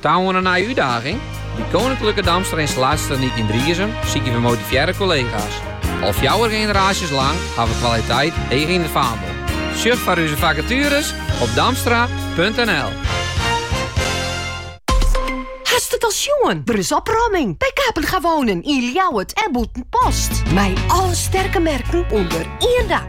Ta oan in nije útdaging? By Koninklijke Damstra Installatietechniek yn Driezum sykje we motivearre kollega's. Al fjouwer generaasjes lang ha we kwaliteit heech yn it faandel. Sjoch foar ús fakatueres op damstra.nl. Hast it al sjoen? Der is opromming by Kapenga Wonen yn Ljouwert en Bûtenpost. Mei alle sterke merken ûnder ien dak.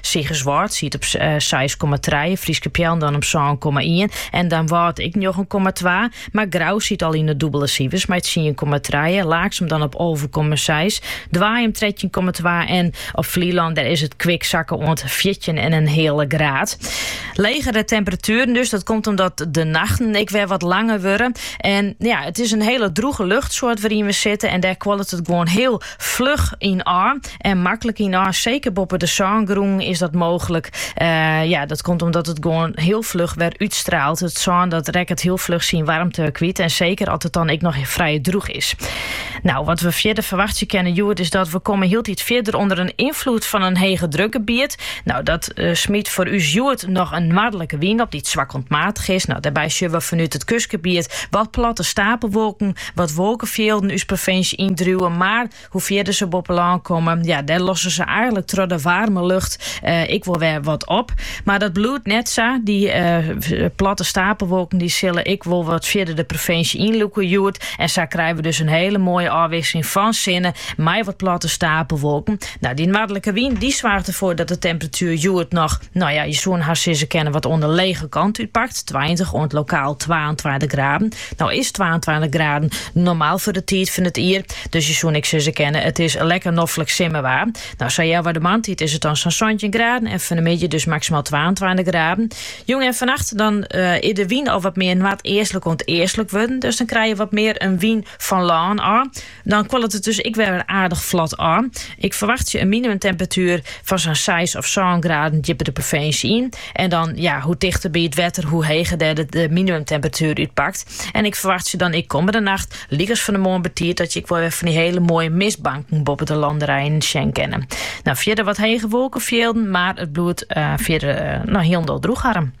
Sigerswâld siet op seis komma trije, Fryske Peallen dan op sân komma ien en Damwâld ek njoggen komma twa. Mar Grou siet al yn 'e dûbele sifers mei tsien komma trije, Laaksum dan op alve komma seis, Doaium trettjin komma twa en op Flylân dêr is it kwik sakke oant fjirtjin en in heale graad. Legere temperatueren dus, dat komt omdat de nachten ek wer wat langer wurde. En ja, it is in hele droege luchtsoart wêryn we sitte en dêr kuollet it gewoan hiel Fluch yn ôf en maklik yn ôf, seker boppe de sângrûnen is dat mooglik. ja, dat komt omdat it gewoan hiel fluch wer útstraalt. It sân dat rekket hiel fluch syn warmte kwyt en seker as it dan ek noch frij droech is. Nou, wat we fierder ferwachtsje kinne hjoed is dat we komme hieltyd fierder ûnder in ynfloed fan in hegedrukgebiet. Nou, dat eh, smyt foar ús hjoed noch in noardlike wyn op dy't swak oant matich is. Nou, dêrby sjogge we fanút it kustgebiet wat platte stapelwolken Wat wolkefjilden ús provinsje yn driuwe, mar hoe fierder se boppe lân komme, ja, dêr losse se eigenlik troch de waarme lucht ek wol wer wat op. Mar dat bliuwt net sa. Dy platte stapelwolken dy sille ek wol wat fierder de provinsje yn lûke hjoed. En sa krije we dus in hiele moaie ôfwisseling fan sinne mei wat platte stapelwolken. No, dy noardlike wyn dy soarget derfoar dat de temperatuer hjoed noch, no ja, je soene hast sizze kinne wat oan de lege kant útpakt, tweintich oant lokaal twaentweintich graden. No is twaentweintich graden normaal foar de tiid fan it jier, dus je soene ek sizze kinne, it is lekker noflik simmerwaar. No sa healwei de moarntiid is it dan sa'n santjin graden en fan de middei dus maksimaal twaentweintich graden. Jûn en fannacht dan is de wyn al wat mear noardeastlik oant eastlik wurden, dus dan krije je wat mear in wyn fan lân ôf. Dan kuollet it dus ek wer aardich flot ôf. Ik ferwachtsje in minimumtemperatuer fan sa'n seis of sân graden djipper de provinsje yn. En dan, ja, hoe tichter by it wetter, hoe heger dêr de, de minimumtemperatuer útpakt. En ik ferwachtsje dan ek kommende nacht, lykas fan de moarn betiid, dat je ek wel wer fan dy hiele moaie mistbanken boppe de lannerijen sjen kinne. No, fierder wat hege wolkefjilden, mar it bliuwt uh, fierder uh, no, hiel droech ehm.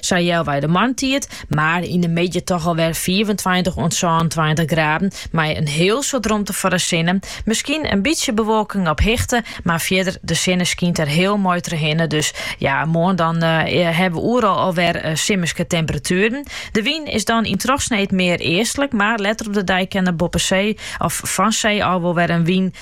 Sa healwei de moarntiid mar yn de middei toch al wer fiifentweintich oant sânentweintich graden mei in hiel soad romte foar de sinne. Miskien in bytsje bewolking op hichte, mar fierder de sinne skynt der hiel moai trochhinne. Dus ja, moarn dan hawwe we oeral al wer simmerske temperatueren. De wyn is dan yn trochsneed mear eastlik, mar letter op de dei kin der boppe see of fan see ôf wol wer in wyn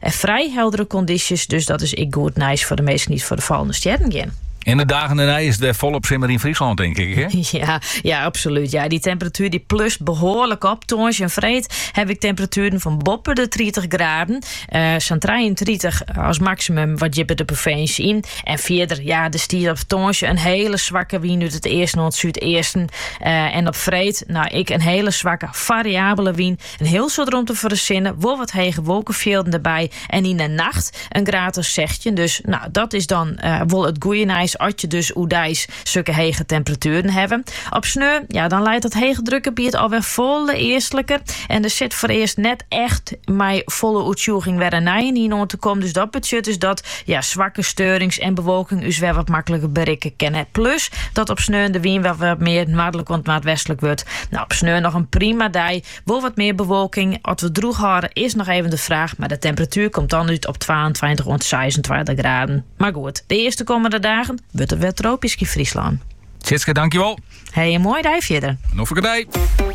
En frij heldere kondysjes, dus dat is ek goed nijs foar de minsken dy't foar de fallende stjerren gean. Yn de dagen dernei is it wer folop simmer yn Fryslân, tink ik, hè? Ja, ja absolút. Ja, dy temperatuer dy plust behoarlik op. Tongersdei en freed haw ik temperatueren fan boppe de tritich graden. Uh, Sa'n 33 als maximum wat djipper de provinsje yn. En fierder, ja, der stiet op tongersdei in hiele swakke wyn út it east oant súdeasten. Uh, en op freed, nou, ek in hiele swakke fariabele wyn. In hiel soad romte foar de sinne, wol wat hege wolkefjilden derby en yn 'e nacht in graad of sechstjin. Dus no, dat is dan wol it goeie nijs as je dus oerdeis sokke hege temperatueren hawwe. Op sneon, ja, dan leit dat heechedrukgebiet alwer folle eastliker en der sit foarearst net echt mei folle oertsjûging wer in nijenien oan te kommen. Dus dat betsjut dus dat Ja, swakke steurings en bewolking ús wer wat makliker berikke kinne. Plus dat op sneon de wyn wer wat mear noardlik oant noardwestlik wurdt. Nou, op sneon noch in prima dei. Wol wat mear bewolking. Oft we droech hâlde is noch even de fraach, mar de temperatuer komt dan út op twaentweintich oant seisentweintich graden. Mar goed, de earste kommende dagen wurdt it wer tropysk yn Fryslân. Sietske, dankjewel. Hey, in moaie dei fierder. Noch in dei.